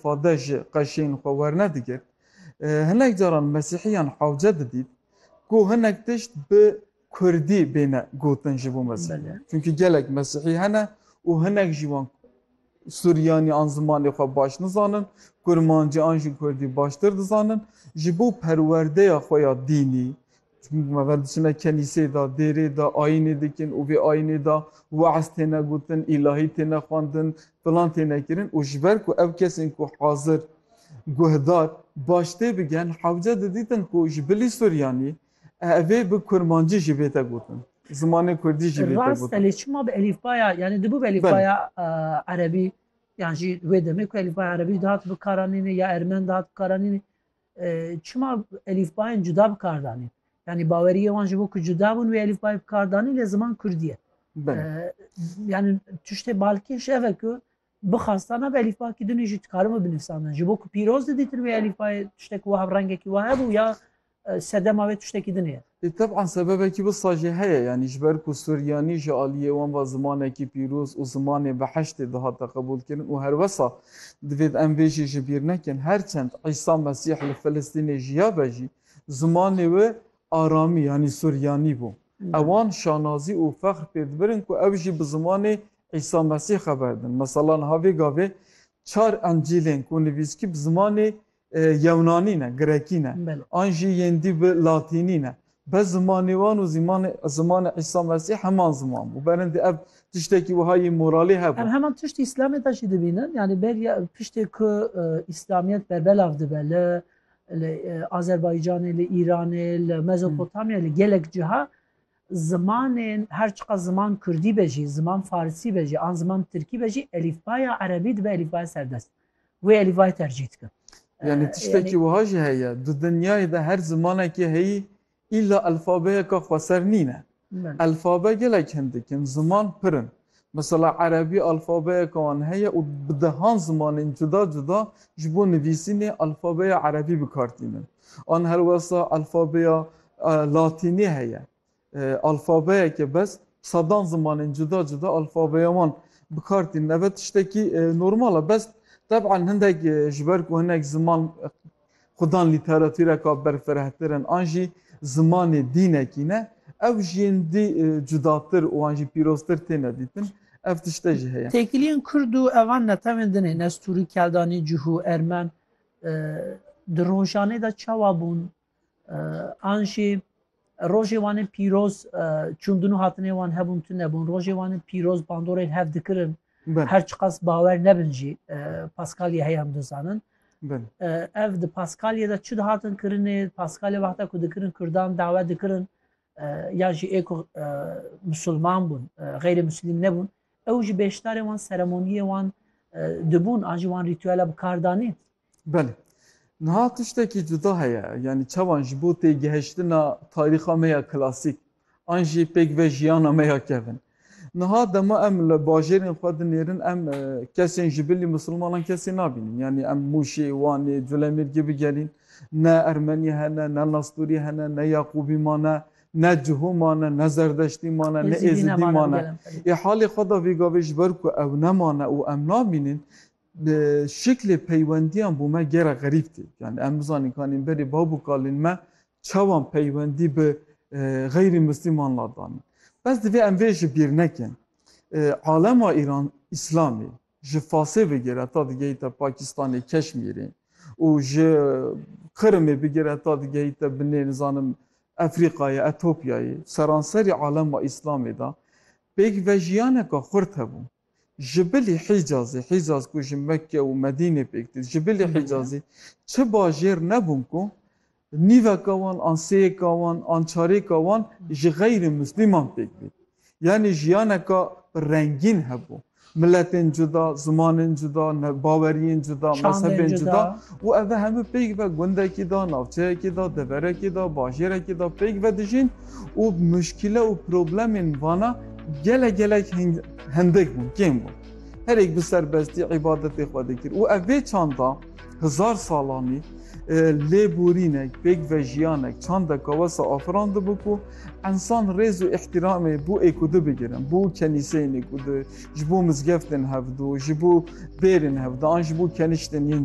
Fadde ji qeşên xwe wernedigir. Hinek caran mesîhiyan hewce didît ku hinek tişt bi kurdî bêne gotin ji bo mesîhiyan. Çunkî gelek mesîhî hene û hinek ji wan suryanî an zimanê xwe baş nizanin, kurmancî an jî kurdî baştir dizanin. Ji bo perwerdeya xwe ya dînî, Çimkî ku me ve diçine kenîseyê de, dêrê de, ayînê dikin û vê ayînê de weez têne gotin, îlahî têne xwendin, filan têne kirin û ji ber ku ew kesên ku hazir, guhdar, baş tê bigen hewce didîtin ku ji bilî Suryanî ev ê bi kurmancî jî bête gotin, zimanê kurdî jî bête gotin. Rast e lê çima bi elîfbaya yanî dibû bi elîfbaya erebî yan jî wê demê ku elîfbaya erebî dihat bikaranînê ya ermen dihat bikaranînê. Çima elîfbayên cuda bi kar danîn? Yanî baweriyê wan ji bo ku cuda bûn wê elîfbayê bi kar danîn lê ziman Kurdî ye. Yanî tiştê balkêş ev e ku bixwastana bi elîfba kî dunî jî dikaribû binivîsandin. Ji bo ku pîroz didîtin wê elîfbayê tiştek wiha rengekî wiha hebû ya sedema wê tiştekî dinê ye. Lê teb'an sebebekî wisa jî heye, yanî ji ber ku suryanî ji aliyê wan ve zimanekî pîroz û zimanê behiştê dihate qebûlkirin û her wisa divêt em vê jî ji bîr nekin, her çend Îsa Mesîh li Filistînê jiyabe jî zimanê wê aramî yanî suryanî bû. Ewan şanazî û fexr pê dibirin ku ew jî bi zimanê Îsa Mesîh xeber din. Mesela niha vê gavê çar Encîlên ku nivîskî bi zimanê Yewnanî ne, Grekî ne an jî yên dî bi Latînî ne. Bes zimanê wan û zîmanê zimanê Îsa Mesîh heman ziman bû. Berindî ev tiştekî wiha yê moralî hebû. Ev heman tişt Îslamê de jî dibînin. Yanî beriya piştê ku Îslamiyet berbelav dibe li li Azerbaycanê, li Îranê, li Mezopotamyayê, li gelek ciha zimanên her çiqas ziman Kurdî be jî, ziman Farsî be jî an ziman Tirkî be jî elîfbaya Erebî dibe elîfbaya serdest. Wê elî vay tercîh dikim. Yani tiştekî wiha jî heye di dinyayê de her zimanekî heyî îlla elfabeyeke xweser nîne. Elfabe gelek hin dikin, ziman pir in. Mesela erebî elfabeyeke wan heye û bi dehan zimanên cuda cuda ji bo nivîsînê elfabeya erebî bikar tînin. An helwesta elfabeya latînî heye. Alfabeyeke bes sedan zimanên cuda cuda alfabeya wan bi kar tînin. Ev e tiştekî normal e. Bes teb'an hindek ji ber ku hinek ziman xudan lîteratûreka berfirehtir in an jî zimanê dînekî ne ew ji yên dî cudatir û an jî pîroztir têne dîtin. Ev tişte jî heye. Têkiliyên kurd û evan netewên din hêne stûrî keldanî cih û ermen di rojanê de çawa bûn? An jî rojê wan ên pîroz çûn din û hatinê wan hebûn tu nebûn. Rojê wan ên pîroz bandorên hev dikirin. Her çiqas bawer nebin jî Paskalya heye em dizanin. Ev di Paskalya de çi dihatin kirinê, Paskalya wexta ku dikirin Kurdan dawet dikirin ya jî ê ku musulman bûn xeyrê muslîm nebûn ew ji bêşdarê wan seremoniyê wan dibûn an ji wan rîtûela bi kardanê Belê niha tiştekî cuda heye yanî çawan ji bo têgihiştina tarîxa me ya klasîk an jî pêk ve jiyana me ya kevin Niha dema em li bajêrên xwe dinêrin em kesên ji bilî misilmanan kesî nabînin. Yanî em Mûşê, Wanê, Colemêrgê bigerîn ne Ermenî hene, ne Nasturî hene, ne Yaqûbî mane, ne Cihu mane, ne Zerdeştî mane, ne Êzidî mane. Ê halê xwe da vê gavê ji ber ku ew nemane û em nabînin şiklê peywendiyan bo me gera xerîb tê. Yanî em bizanîn kanîn berê bav û kalên me Çawan peywendî bi xeyrî mislîman la dane. Bes divê em vê ji bîr nekin. Alema Îran Îslamî ji Fasê bigir heta digehîte Pakistanê, Keşmîrê û ji Qirimê bigir heta digehîte binê nizanim Efrîqayê, Etopyayê, seranserî alema Îslamê de pêk vejiyaneke xurt hebûn. Ji bilî Hîcazê, Hîcaz ku ji Mekke û Medînê pêk tê, ji bilî Hîcazê çi bajêr nebûn ku nîveka wan an sêyeka wan an çarêka wan ji xeyrê Muslîman pêk bê. Yanî jiyaneka rengîn hebû. Miletên cuda, zimanên cuda, baweriyên cuda, mezhebên cuda û ev hemû pêk ve gundekî de, navçeyekî de, deverekî de, bajêrekî de pêk vedijîn. û muşkîle û problemên vana gelek gelek hindik bûn, kêm bûn. Herêk bi serbestî îbadetê xwe dikir û ev vê çanda hizar salanî lêborînek, pêkvejiyanek çandeka wesa afirandibû ku ensan rêz û îhtîramê bo êkudi bigirin, bo kenîseyên êkudi, ji bo mizgeftên hevdu, ji bo bêrên hevdu an ji bo keniştên yên